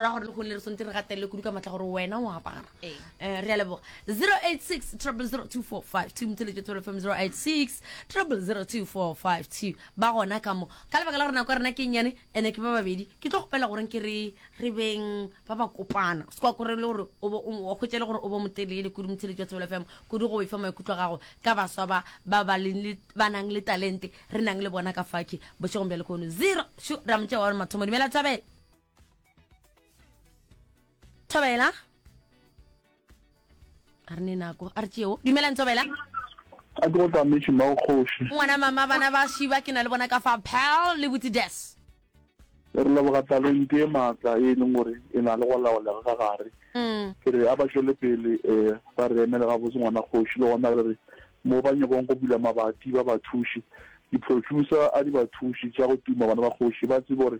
ra gore lehono le re swantse re gatelele kudu ka matla gore wena o apara um re a leboga 086 00245 motseletšo tswelo fm 086 00245 ba gona ka mo ka lebaka la gore nako ya rena ke nnyane ene ke ba babedi ke tlo gopela goreng ke re re beng ba ba kopana se kwa kore le gore wa kgwetsa le gore o bo motelele kudu motseletšo tswelo fm kudu go efa maikutlo gago ka baswa ba ba ba nang le talente re nang le bona ka faki bošegong bja lekono zero ra motse wa gore mathomo dumela thabela thobela a re ne nako a re tšeo dumelang thobela a ke go tsametse mma kgoši ngwana mama bana ba šiba ke na le bona ka fa pal le butse des re leboga talente e maatla e leng gore e na le go laolega ka gare mm. ke re a ba tšwele pele um ba re emele ga botse ngwana kgoši le gona re re mo ba nyakong go bula mabati ba bathuši di-producer a di bathuši tša go tuma bana ba kgoši ba tsebe gore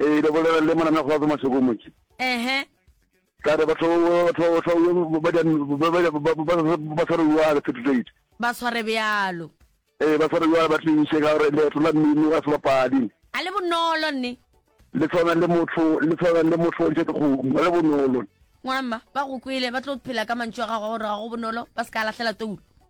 Ee, le bolela le mona mekgwa fa masoko motse. Ehe. Ka re batho batho batho ba di ba ba ba tshware bjalo certificate. Ba tshware bjalo. Ee, ba tshware bjalo ba tliše ka gore leeto la mmino ga se bapadi. A le bonolo nne. Le tshwana le motho le tshwana le motho o ntše ke kgomo ga le bonolo. Ngwana mma ba go kwele ba tlo phela ka mantšu a gago a gore ga go bonolo ba se ka lahlela toulo.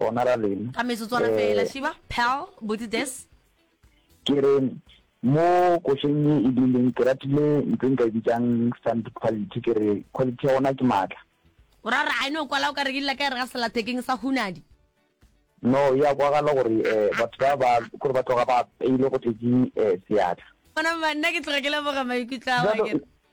gona ra lena ka metsotswana eh, fela shiba pal botse des ke re mo košeng e e dileng ke ratile ntse nka e bitsang stand quality ke re quality ya gona ke maatla o ra re a ene o kwala o ka re ke dila ka e re ga selathekeng sa hunadi no ya kwagala gore um batho ba ba gore ba tloga ba peile go tletse um seatla ona banna ke tloga ke leboga maikutlo a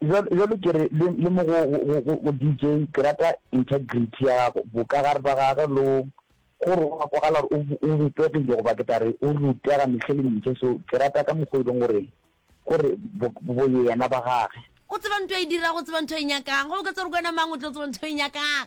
Bjalo ke re le mo go DJ, ke rata integrity ya gago, bokagare ba gage le gore o a kwagala gore o bopegile goba ke tla re o rutega mehle le mehle. So ke rata ka mokgwa o e leng gore gore boyena ba gage. O tseba ntho e dirago, o tseba ntho e nyakang, goba ka tsere kwena mang o tlo tseba ntho e nyakang.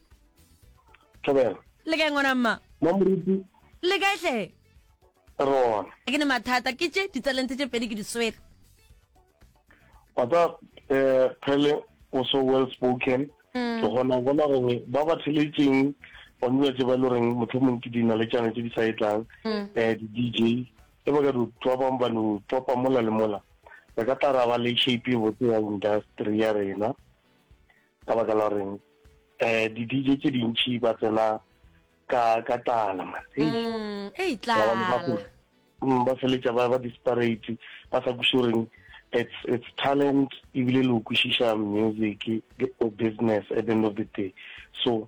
thobela le kae ngwana mma mamoruti le kae tlhe rona ke ne mathata ke tše ditsalentse tše pedi ke di swere wa tsa um phele o so well spoken mm. ke kgona go bona gore ba ba theletseng gone dilo tse ba le goreng motho mongwe ke dina le tšane tse di sa e tlang um di-d j e ba ka ditswa bangwe ba no topa mola le mola re ka tla ra ba le shape e botse ya industry ya rena Ka baka la goreng eh di DJ tse dintši ba tsena ka ka tlala man hey mm, hey tlala mm, ba feletša ba ba disparate ba sa kuse goreng it's it's talent ebile le o kwešiša music or business at the end of the day so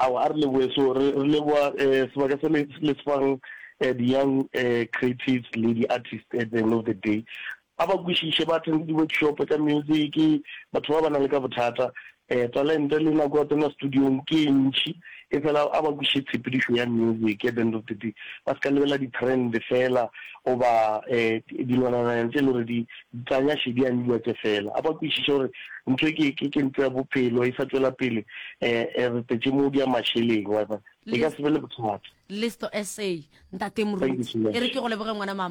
Aowa, a re lebohe. So re re leboha eh sebaka se le le sefang eh di young eh creatives le di artists at the end of the day. A ba kwishishe ba attend di workshop tsa music, batho ba ba nang le ka bothata eh talente le nako ya tsena studio-ng ke e ntši. E fela a ba kwishe tshepedišo ya music at the end of the day. Ba se ka lebella di trend fela goba eh dilwanana tse le gore di Ntanya še di a nnya tše fela. A ba kwešiše gore ntho e ke, ke, ke ntlo ya bophelo e sa tšwela pele. E, e retetše mo di ya mašeleng, wa bona. E ka se be le bothata. Listo, SA, Ntate Thank you Moruti. so E re much. ke go leboge, ngwana mama.